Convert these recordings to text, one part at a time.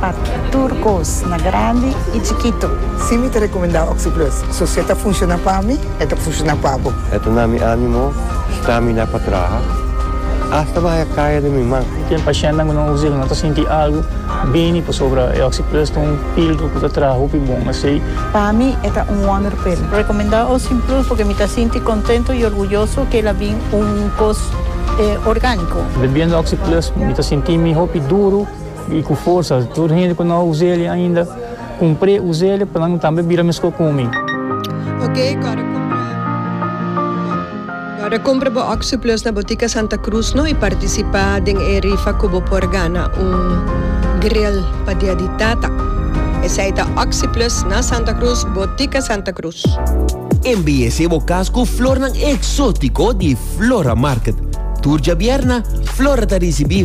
Pa tur kos, na grandi i chikitu. Si mi ta rekomendá Oxyplus, so si e ta funshoná pa mi, e ta funshoná pa bo. E ta na mi ánimo, stamina pa traha, asta pa haya kaya den mi man. Ken pashentenan ku nan usa i ku nan ta sinti algu bini pasobra e Oxyplus ta un píldru ku ta traha hopi bon esei. Pa mi e ta un wonder pil. Rekomendá Oxyplus purke mi ta sinti kontentu i orguyoso ku el a bin un kos orgániko. Bebiendo Oxyplus mi ta sinti mi hopi duru. I ku forsa tur hende ku no a usa el ainda kumpr'é usa el pa nan tambe bira meskos ku mi. Ok, kòrda kumpra kòrda kumpra bo Oxyplus na Botica Santa Cruz no i partisipá den e rifa ku bo por gana un grill pa dia di tata. Esei ta Oxyplus na Santa Cruz, Botica Santa Cruz. Embelesé bo kas ku flornan eksótiko di Flora Market. Tur djabièrna, Flora ta risibí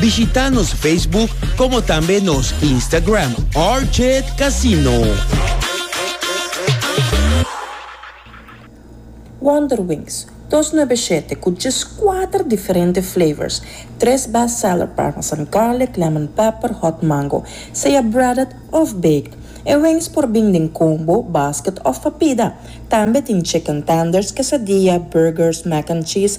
Bishita nos Facebook como tambe nos Instagram Orchid Casino. Wonder Wings, dos nuebe shete cu djes cuater diferente flavors, tres best seller parmesan garlic, lemon pepper, hot mango, sea breaded of baked. E wings por bin den combo, basket of pa pida. Tambe tin chicken tenders, quesadilla, burgers, mac and cheese,